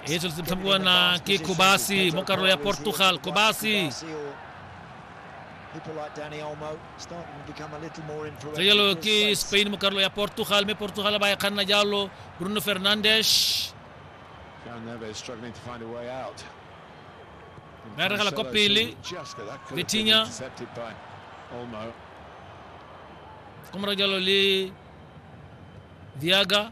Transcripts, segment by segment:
iso le tshamekwa na ke kobasi mo karolo ya portugal kobasi tse jalo ke spain mo karolo ya portugal mme portugal ba e kganna jalo bruno fernandes ba e regela kwa pele betinya komora jalo le diaga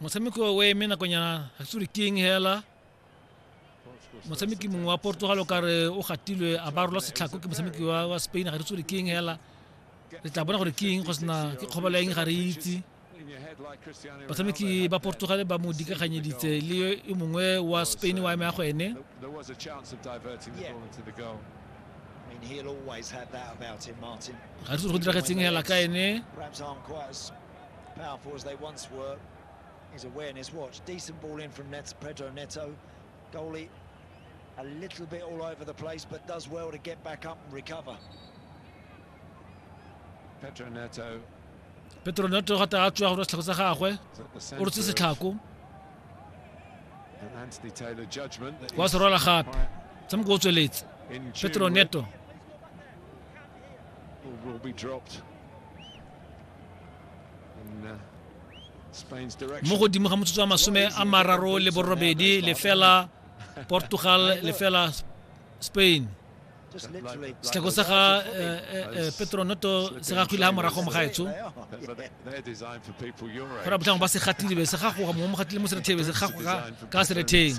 motshameki o eme nakonyana ga se keng hela motshameki mongwe wa portugal o kare o gatilwe a ba rola setlhako ke motshameki wa spain ga re tsore keng hela re tla bona gore keng go sena ke kgobalo eng ga re itse batshameki ba portugal ba mo dikaganyeditse le e mongwe wa spain wa eme ya go ene ga re go diragetseng hela ka ene powerful as they once were. His awareness watch. Decent ball in from Nets, Pedro Neto. Goalie a little bit all over the place, but does well to get back up and recover. Pedro Neto. Pedro Neto ga ta tswa go setlhako sa gagwe. O rutse setlhako. Anthony Taylor judgment. Wa se rola gape. Tshamko o tsweletse. Pedro Neto. mo godimo ga motsotso wa masome a mararo le borobedi lefela portugal lefela spain setlhako sa ga eh, eh, eh, petronoto se ga kgwile ga morago mo gaetsho go ra botlhango ba se gatile be se gagoga mongwe mo gatile mo serethebe se gagoga ka seretheng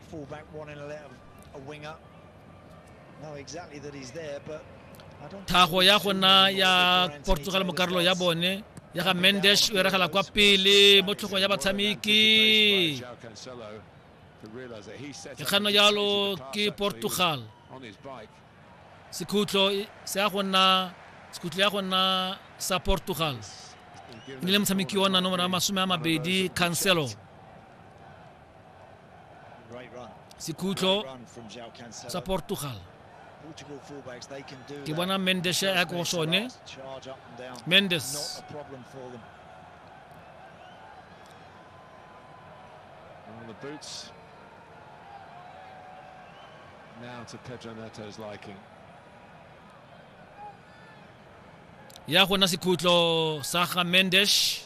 Fullback wanting to let a wing up. Know exactly that he's there, but I don't thago ya go nna ya portugal mo karolo ya bone ya ga mendes o eragela kwa pele mo tlhogong ya batshameki ke kgano jalo ke portugal sekhutlo se ya go nna sekhutlo ya go nna sa portugal e le motshameki ona nomoro ya masome a mabedi cancelo sekhutlo sa portugal ke bona mendes ya ko sone mendes the boots. Now to Pedro Neto's liking. ya gona sekhutlo sa ga mendesh